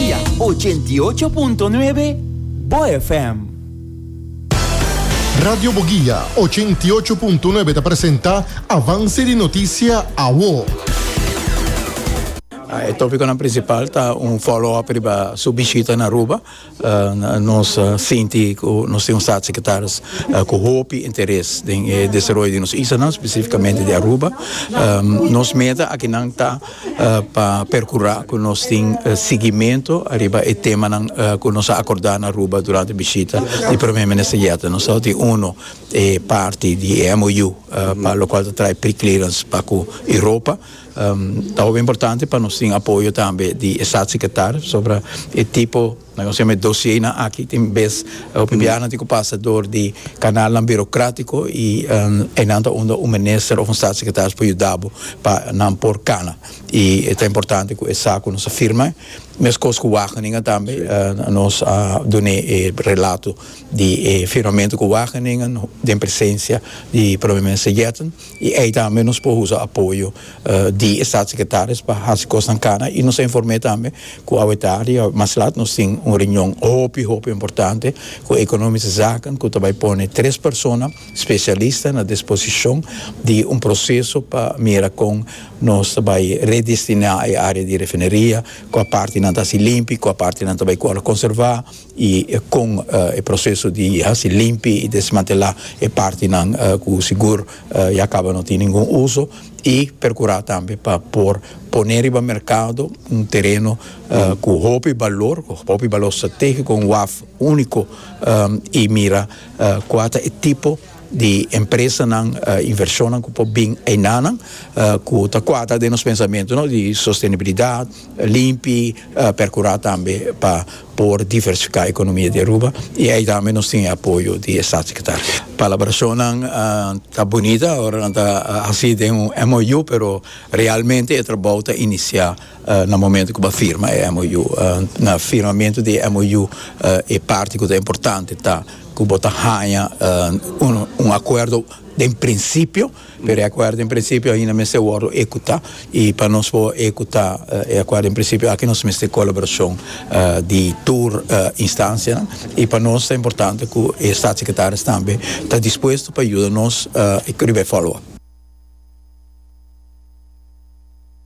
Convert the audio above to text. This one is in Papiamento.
Boglia ochenta i ocho punto nuebe Bo FM. Radio Bogilla ochenta i ocho punto nuebe ta presenta Avance di Noticia Awo. E topiconan principal ta un follow up riba su bishita na Aruba. Nos sinti ku nos tin un staatssecretaris ku hopi interes den e desaroyo di nos islanan, spesifikamente di Aruba. Nos meta akinan ta pa perkurá ku nos tin sigimentu ariba e temanan ku nos a akordá na Aruba durante bishita di Prome Minister Jette. Nos tabata tin unu e parti di e MOU pa lokual ta trae preclearance pa ku Europa. Ta hopi importante pa nos tin apoyo tambe di e Staatssecretaris sobra e tipo, nan kos yama e dosienan aki, tin bes hopi biahanan tin ku pasa dor di kanalnan birokratiko i einan ta unda un minister òf un Staatssecretaris por yuda bo pa nan por kana i ta importante ku esaki ku nos a firma meskos ku Wageningen tambe nos a dun'é e relato di e firmamentu ku Wageningen den presensia di Prome Minister Yetten. y ey tambe nos por usa apoyo di e Staatssecretaris pa haci cosnan cana y nos a informe tambe cu awe tardi awe mas laat nos tin un reunion hopi hopi importante cu Economische Zaken cu ta bay pone tres persona specialista na disposicion di un proceso pa mira con nos ta bay redestina e area di refineria cua partenan ta haci limpi cua partenan ta bay cu ala conserva. y con e proceso di haci limpi y desmantela e partinan cu sigur ya caba no tin ningun uso y percura tambe pa por pone riba mercado un tereno cu hopi balor cu hopi balor strategico un waf unico y mira cua ta e tipo di empresanan invershonnan ku por bin einanan ku ta kuadra den nos pensamentu no di sostenibilidat limpi perkurá tambe pa por diversifiká ekonomia di Aruba i ei tambe nos tin e apoyo di e Statssekretari palabrashonnan ta bunita ora nan ta hasi den un MOU pero realmente e trabou ta inisiá. Na momento cu bo firma e MOU, na firmamento di e MOU e parti cu ta importante ta cu bo ta haña un acuerdo den principio, pero e acuerdo den principio ainda mester wordo ecuta y pa nos por ecuta e acuerdo den principio aki nos mester colaboracion di tur instancianan y pa nos ta importante cu e Staatssecretaris tambe ta dispuesto pa yuda nos cu riba e follow up.